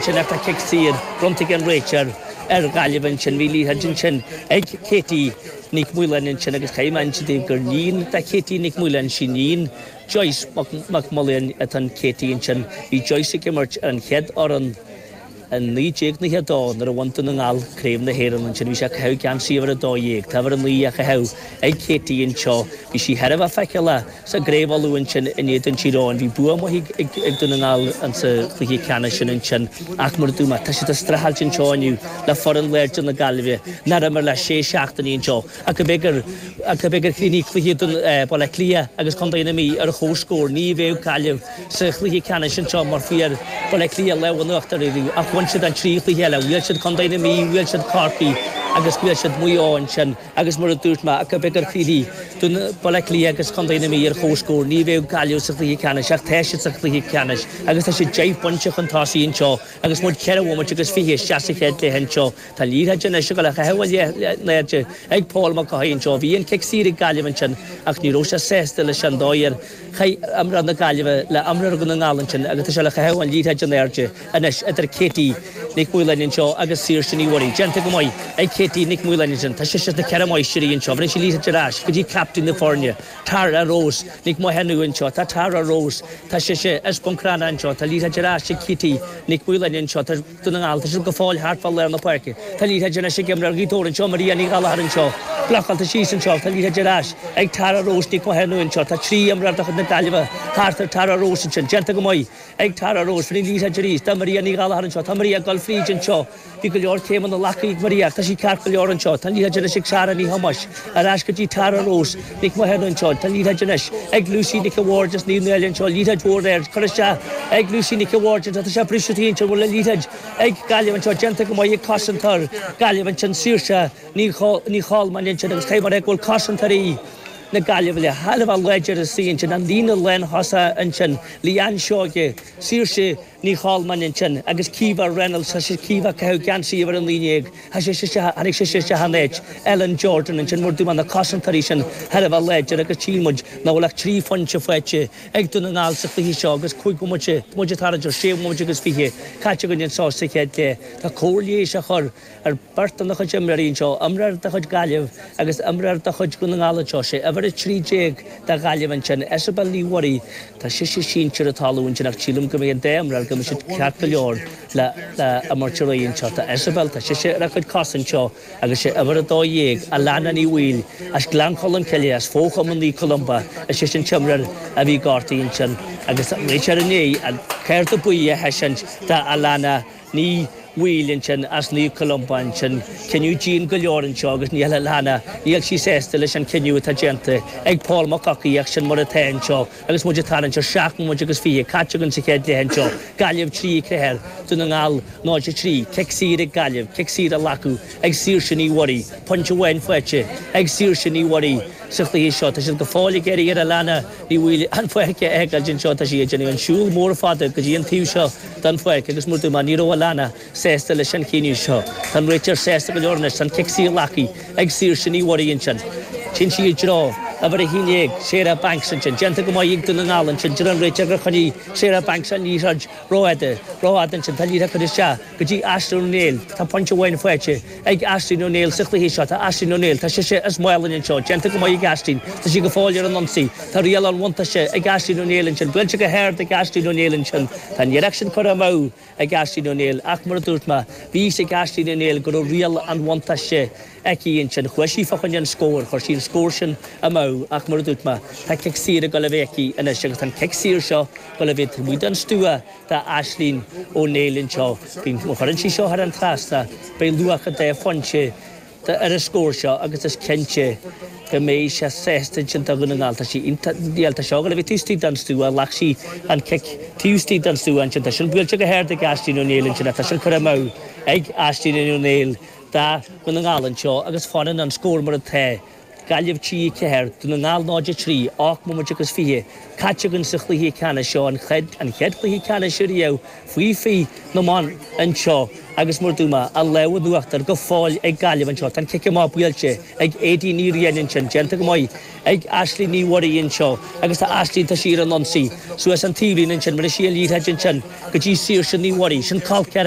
Ceann ach tá cic saor bronnta ag an réiteoir ar Ghaillimh ansin. Bhí liathróid ansin ag Katie Nic Mhaoláin ansin agus caithfidh mé insint daoibh gur iníon do Katie Nic Mhaoláin is iníon Joyce Mac Maoláin atá in Katie ansin. Bhí Joyce ag imirt ar an chéad fhoireann i 1992 nuair a bhain Dún na nGall Craobh na hÉireann ansin. Bhí sé ag caitheamh geansaí uimhir a dó dhéag. Tá uimhir a naoi á chaitheamh ag Katie anseo. Bhí sí thar a bheith feiceálach. Sa gcraobh Uladh ansin in éadan Thír Eoghain, bhí bua maith ag Dún na nGall sa chluiche ceannais sin ansin ach mar a dúirt mé, tá siad ag streachailt anseo inniu le foireann láidir na Gaillimhe, nár imir le sé seachtaine anseo, ach ab é gur chríochnaigh cluiche Bhaile Átha Cliath agus chontae na Mí ar chomhscór. Ní bheadh Gaillimh sa chluiche ceannais anseo mar fuair Baile Átha Cliath lámh in uachtar orthu ach bhain siad an trí chluiche eile, bhuail siad contae na Mí, bhuail siad Corcaigh agus bhuail siad Maigh Eo ansin. Agus mar a dúirt mé ach ab é gur chríochnaigh, Dún, Baile Átha Cliath agus Contae na Mí ar chomhscór, ní bheadh Gaillimh sa chluiche ceannais ach tá siad sa chluiche ceannais agus tá siad deich bpointe chun tosaigh anseo agus muid ceithre bhomaite agus fiche isteach sa chéad leath anseo. Tá liathróid anois le caitheamh in airde ag Paul McCaughey anseo. Bhí an cic saor ag Gaillimh ansin ach ní raibh sé sásta leis an dóigh ar Chaith imreoir na Gaillimhe le imreoir Dhún na nGall ansin agus tá sé le caitheamh an liathróid in airde anois idir Katie Nic Mhaoláin anseo agus Saoirse Ní Mhuirí. Déanta go maith ag Katie Nic Mhaoláin ansin. Tá sise as na Ceithre Máistrí anseo. Rinne sí liathróid ar ais go dtí captaen na foirne, Tara Rose Nic Mhathúna anseo. Tá Tara Rose. Tá sise as Bun Cranncha anseo. Tá liathróid ar ais ag Katie Nic Mhaoláin anseo. Tá. Dún na nGall, tá siad go fóill thart fá lár na páirce. Tá liathróid ar ais ag imreoir Ghaoth Dobhair anseo, Maria Ní Ghallachair anseo. Blocáilte síos anseo, tá liathróid ar ais ag Tara Rose Nic Mhathúna anseo. Tá trí imreoir de chuid na Gaillimhe thart ar Tara Rose ansin. Déanta go maith ag Tara Rose. Bhí an liathróid ar ais do Maria Ní Ghallachair anseo. Tá Maria ag dul fríd anseo. Bhí go leor céimeanna glactha ag Maria ach tá sí ceart go leor anseo. Tá an liathróid anois ag Sara Ní Thomáis. Ar ais go dtí Tara Rose Nic Mhathúna anseo. Tá liathróid anois ag Lucy Nic a' Bhaird as Naomh Náille anseo, liathróid mhór ard curtha isteach ag Lucy Nic a' Bhaird anseo, tá sé briste istigh anseo an bhfuil an liathróid ag Gaillimh anseo, déanta go maith ag cosantóir Gaillimh ansin Saoirse Ní Cholmáin ansin agus tchí muid go bhfuil cosantóirí na Gaillimhe thar a bheith láidir istigh ansin an líne lánchosanta ansin, Leanne Seoige, Saoirse. Ní Cholmáin ansin, agus Caoimhe Reynolds, tá Caoimhe ag caitheamh geansaí uimhir a naoi déag, tá sise tháinig sí isteach in áit, Ellen Jordan ansin mar a dúirt mé tá na cosantóirí sin thar a bheith láidir agus tchí muid nach bhfuil ach trí phointe faighte ag Dún na nGall sa chluiche seo agus cúig bhomaite, bhomaite atá idir sé bhomaite agus fiche, caite againn anso sa chéad leath. Tá cóir leighis á chur. Ar beirt de na cusimreoirí anseo, imreoir de chuid Gaillimh agus imreoir de chuid Dhún na nGall anseo, sé uimhir 13 de Ghaillimh ansin, Isobel Ní Mhuirí, tá sise sínte ar an talamh ansin ach sílim go mbeidh an dá imreoir go mbeidh siad ceart go leor le imirt ar aghaidh anseo. Tá Isobel, tá sise ar a cuid cos anseo agus sé uimhir 12, Alana Ní Bhaoill, as Gleann Cholm Cille, as fó-chumann Naomh Columba, is ise an t-imreoir a bhí gortaithe ansin agus réiteoir i ndiaidh an cárta buí a thaiseáint d'Alana. Ní Bhaoill ansin, as Naomh Columba ansin. Cinneadh dian go leor anseo agus níl a lán a, níl sí sásta leis an cinneadh atá déanta ag Paul Mac Eochaidh ach sin mar atá anseo agus muid ag tarraingt ar seacht mbomaite agus fiche caite againn sa chéad cluiche anseo, Gaillimh 3, 4 ar Dún na nGall, 0, 3. Cic saor ag Gaillimh, cic saor á ghlacadh ag Saoirse Ní Mhuirí, pointe amháin faighte ag Saoirse Ní Mhuirí sa chluiche seo. Tá siad go fóill ag iarraidh ar Alana Ní Bhaoill an pháirc a fhágáilt anseo, tá sí ag déanamh an siúl mór fada go dtí an taobh seo, den pháirc agus mar a dúirt mé ní raibh Alana sásta leis an chinneadh seo. Tá an réiteoir sásta go leor anois, tá an cic saor glactha ag Saoirse Ní Mhuirí ansin. Téann sí i dtreo uimhir 11, Sarah Banks ansin. Déanta go maith ag Dún na nGall ansin. Deir an réiteoir gur choinnigh Sarah Banks an liathróid ró fhada, ró fhada ansin. Tá an liathróid curtha isteach go dtí Aisling Ó Néill. Tá pointe amháin faighte. ag Aisling Ó Néill sa chluiche seo. Tá Aisling Ó Néill, tá sise as Málainn anseo, déanta go maith ag Aisling, tá sí go fóill ar an ionsaí, tá riail an bhuntáiste ag Aisling Ó Néill ansin, buailte go hard ag Aisling Ó Néill ansin, tá an iarraidh sin curtha amú ag Aisling Ó Néill ach mar a dúirt mé, bhí fhios ag Aisling Ó Néill go raibh riail an bhuntáiste aici ansin, chuaigh sí fá choinne an scóir, chuir sí an scór sin amú ach mar a dúirt mé, tá cic saor ag goil a bheith aici anois agus tá an cic saor seo goil a bheith taobh amuigh den stua. Tá Aisling Ó Néill anseo againn. Má chuireann sí seo thar an trasnán, beidh luach an dá phointe ar an scór seo agus is cinnte go mbeidh sé sásta insint do Dhún na nGall. Tá sí iontach seo. Nuair a bhí taobh istigh don stua, ghlac sí an cic taobh istigh don stua ansin. Tá sin buailte go hard ag Aisling Ó Néill ansin. Tá sin curtha amú ag Aisling Ó Néill do Dhún na nGall anseo agus fanann an scór mar atá. Gaillimh 3-4 Dún na nGall 0-3, ocht mbomaite agus fiche caite againn sa chluiche ceannais seo, an chéad chluiche ceannais riamh faoi 20 na mban anseo agus mar a dúirt mé an lámh in uachtar go fóill ag Gaillimh anseo. Tá an cic amach buailte ag Éadaoin Ní Riain ansin, déanta go maith ag Aisling Ní Mhuirí anseo agus tá Aisling, tá sí ar an ionsaí suas an taobhlíne ansin bheireann sí an liathróid ansin go dtí Saoirse Ní Mhuirí, sin caillte ar